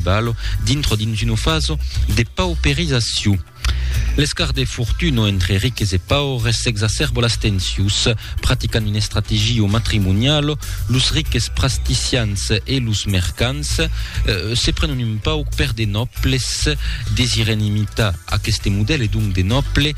Balo, dintro dins una faso de pauperizacion. L'escart de fortuna entre riques e paures s'exacerba las tensius. Practicant una estrategia matrimoniala, los riques prasticians e los mercants se prenon un pauc per de nòbles. Desiren imitar aqueste modèle, donc de nòble,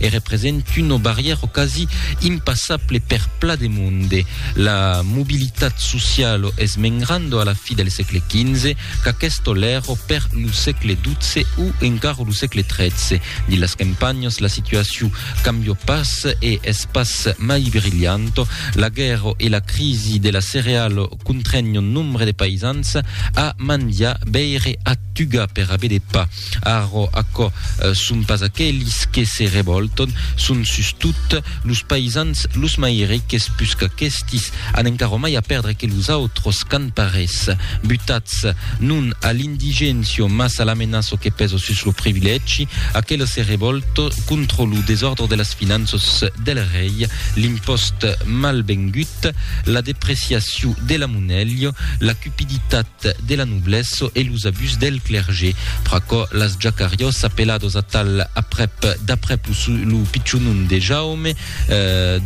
e represent una barrièra o quasi impassable per pla de monde. La mobilitat sociala es mengrando a la fi del sègle XV, qu'aquesto l'èra per lo sègle XII o encara lo sègle XIII. Dins las campanhas la situacion cambia pas e es pas mai brilhanta. La guèrra e la crisi de la cereala Contrèn un nombre de païsans a mandiar beire a Tuga per aver de pa. Arro aquò son pas aquelis que se revòlton, son sustot los païsans, los mai riques pus qu'aquestis, an encara mai a pèrdre que los autros qu'an pas res. Butats, non a l'indigéncio mas a l'amenaço que pèso sus lo privilègi, aquela se revòlto contra lo desòrdre de las finanças del rei, l'impòst mal vengut, la depreciaciu de la monelha, la cupiditat de la noblessa e los abús del clergé. Pr'aquò, las jacariós apelados atal aprèp d'aprèp lo pichon nom de Jaume,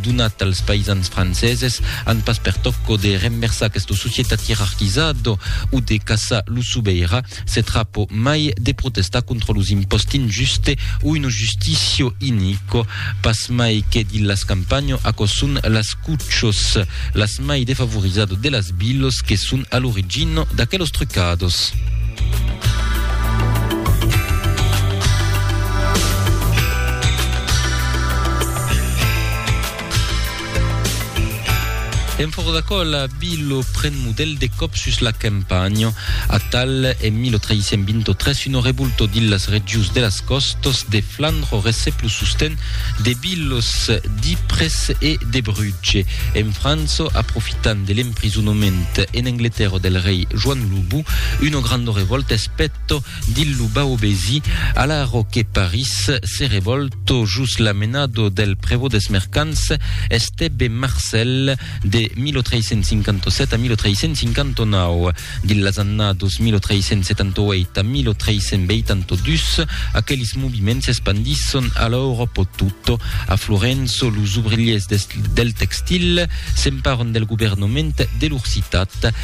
donat als païsans franceses, an pas pertòc o de renversar aquesta societat ierarquizada o de caçar lo sobeira, Se trapo mai de protestar contra los imposti injuste o uno justicio inico. Pas mai que di las campanho aquò son las cuchos, las mai defavorizado de las bilos que son a l'origino d'aquelos trucados. En fòra d'aquòl, Abi lo pren modèl de còp sus la campanha. Atal, en 1323, un revolto dins las regions de las còstas de Flandre recep lo sosten de Bilos, d'Ypres e de Brutge. En França, aprofitant de l'emprisonament en Angletèrra del rei Joan lo Bou, una granda revòlta es pèta. Dil lo baobesi, alaro que Paris se revòlto jos la menado del prevot des mercants Estèbe Marcèl de 1357 a 1359. Dil las annados 1378 a 1382, aquelis moviments s'espandisson a l'Auròpo tota. A Florenço, los ouvrilhers del textil s'emparon del governament de lor citat.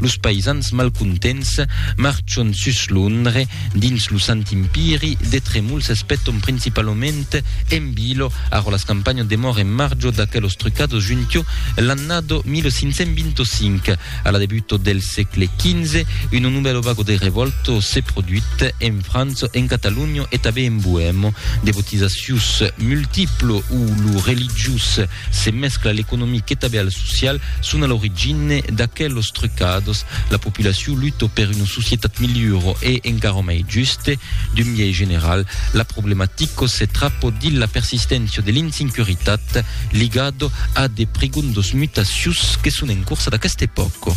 Los païsans malcontents marchon sus Londre. Dins lo Sant Empiri, de tremols s'espèton principalament en Bilo, arrò las campanhas demòr en marjo d'aquelos trucados juntio l'annado 1525. A la debuto del sègle XV, una novèlo vago de revòlto se produit en França, en Catalonha e tanben en Boèma. De botizacius multiplo o lo religiós Se mescla l'economic e tabèal social son a l'origine d'aquelos trucados. La populacion luto per una societat milhuro e encara mai juste. D'un biais general, la problematico se trapo dins la persisténcia de l'insincuritat ligado a de prigondos mutacius que son en corsa d'aqueste pòco.